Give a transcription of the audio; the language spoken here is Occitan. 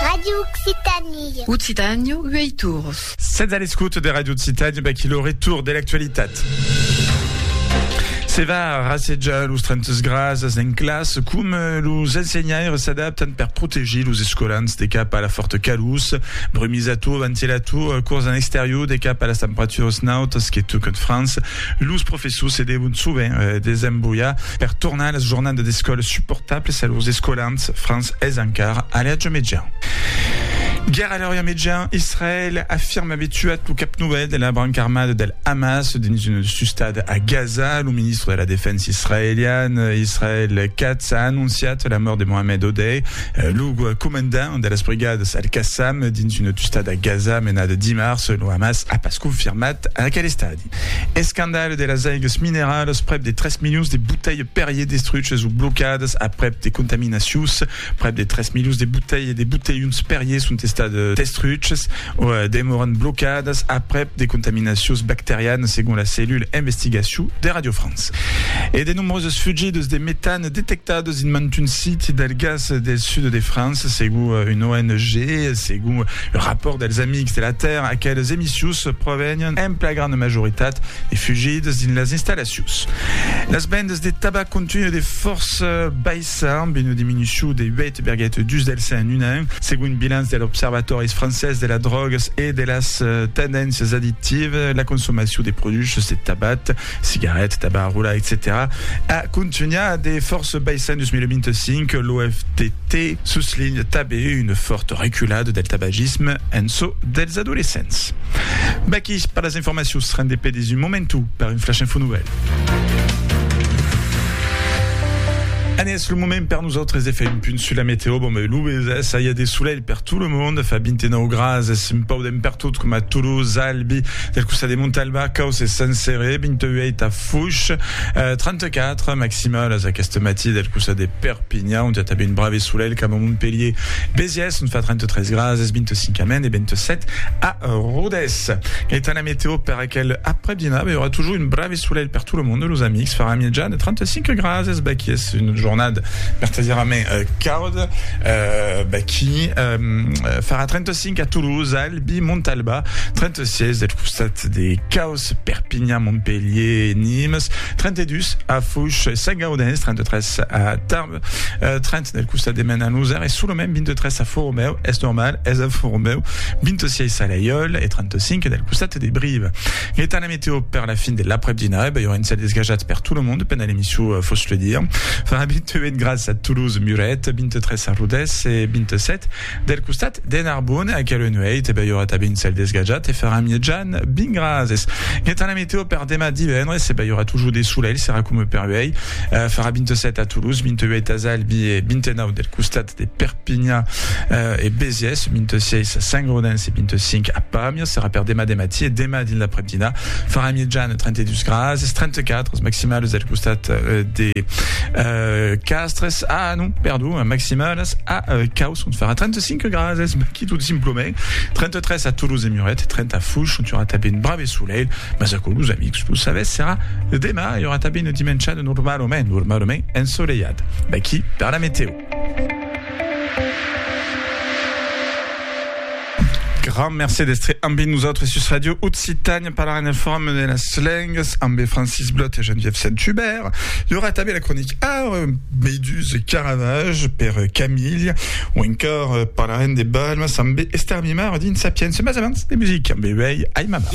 Radio Occitanie. Occitània, uèi torns. Sètz a l'escota de Radio Occitània, vaquí lo retorn de l'actualitat. Se va rassejar los trentes grasas en classe com eh, los ensenhaires s'adaptan per protegir los escolans de cap a la forta calús, brumisator, ventilator, eh, cors en exterior de cap a las temperaturas nautas que tocan França, Los professors se devon sovent desembolhar per tornar las jornadas d'escòla suportablas a lors escolans, França es encara a l'atge median. Guèrra a l'atge median, Israèl afirma aver tuat lo cap novèl de la branca armada del Hamas dins una sustada a Gaza. Lo ministre de la Defensa israelian, Israel Katz, a anonciat la mòrt de Mohamed Odeh, lo comandant de las brigadas Al-Qassam dins una tustada a Gaza menada dimars. Lo Hamas a pas confirmat aquel estat. Escandalh de las aigas mineralas, prèp de 3 milions de botelhs Perrier destruches o blocadas aprèp de contaminacions. Prèp de 3 milions de botelhs de botelhons Perrier son estat destruches o demòran blocadas aprèp de contaminacions bacterianas, segon la cellula investigacion de Radio France. E de nombroses fugidas de metan Detectados dins mantun siti del gas del sud de França, segon una ONG e segon un rapòrt dels Amics de la Tèrra, aqueles emissius provenián en plagrana majoritat de fugidas dins las installacions. Las vendas de tabac continuen de fòrça baissar, amb una diminucion de 8,2 del cent en un an, segon un bilanç de l'Observatòris francés de las drògas e de las tendéncias addictivas, la consomacion de produchas de tabac cigarèt, tabac, rolar, etcetèra a contunhar de fòrça baissar en 2025, l'OFDT soslinha tanben una fòrta reculada del tabagisme en çò dels adolescents. Vaqui per las informacions, rendé per dins un momentu per un flash info nouvèl. En es lo moment per nosautres de fèr un punt sus la meteo, bon ben lo bes, ça y a de solelh per tout le monde, fa 29 graas, es un pauc Ben pertot coma Toulouse, Albi, del costat de Montalba, Caus e Sant Cere, 28 a Foix, 34 maximalas aqueste matí del costat de Perpinha, ont i a tanben un brave solelh coma Montpelhier, Besiès, ont fa 33 graas es 25 a Maine e 27 a Rodés. Etant la meteo per aquel aprèp dinar, ben i aurà toujours un brave solelh per tot lo monde, los amics, farà mièja de 35 graas es baquí es una jornada vertadièrament cauda, baquí farà 35 5 a Toulouse, Albi, Montalba, 36 del costat de Caus, Perpignan, Montpellier, Nimes, 32 a Fouch, Saint-Gaudens, 33 a Tarbes, 30 euh, del costat de Mena, Nousar, e solament 23 a Formeu, es normal, es a Formeu, 26 a Laiol, e 35 del costat de Brive. L'etat la météo per la fin de l'après-dina, e ben, y'aurà un cel desgajat per tout le monde, pendant l'émission, euh, fos le dire. Farà 28 graus a Toulouse, Muret, 23 a Rodès, e 27 Del costat de Narbon, aquela nuèit, bèi ora tabin cèl desgajat e farà mièjan bin gras es. Guètan la meteo per demà divendres, bèi ora tujor de solelh, serà coma per uèi, farà 27 a Toulouse, 28 as Albi e 29 del costat de Perpinha e Besiès, 26 a Saint-Gaudens e 25 a Pàmias, serà per demà de matí e demà dins l'aprèmdina farà mièjan 32 gras es, 34 as maximales del costat de Castres. Ah non, perdon, a maximalas a Caus on farà 35 grades, ma qui tot simplament 33 a Toulouse e Muret, 30 a Fouch on aurà tabé un brave soleil, mas aquò los amics lo savètz serà demà e aurà tabé una dimenchada normalament, normalament ensoleiada. D'aquí per la meteo. Grand mercé d'estre ambe nosautres sus Radio Occitània parlar en el forum de las lengas ambe Francis Blot e Geneviève Saint-Hubert. I aurà tanben la cronic Ar Beidús e Caravage per Camilh o encòr parlarem de balmas ambe Esther Mimard dins Sapiens. Mas abans de music ambe uèi Aimama.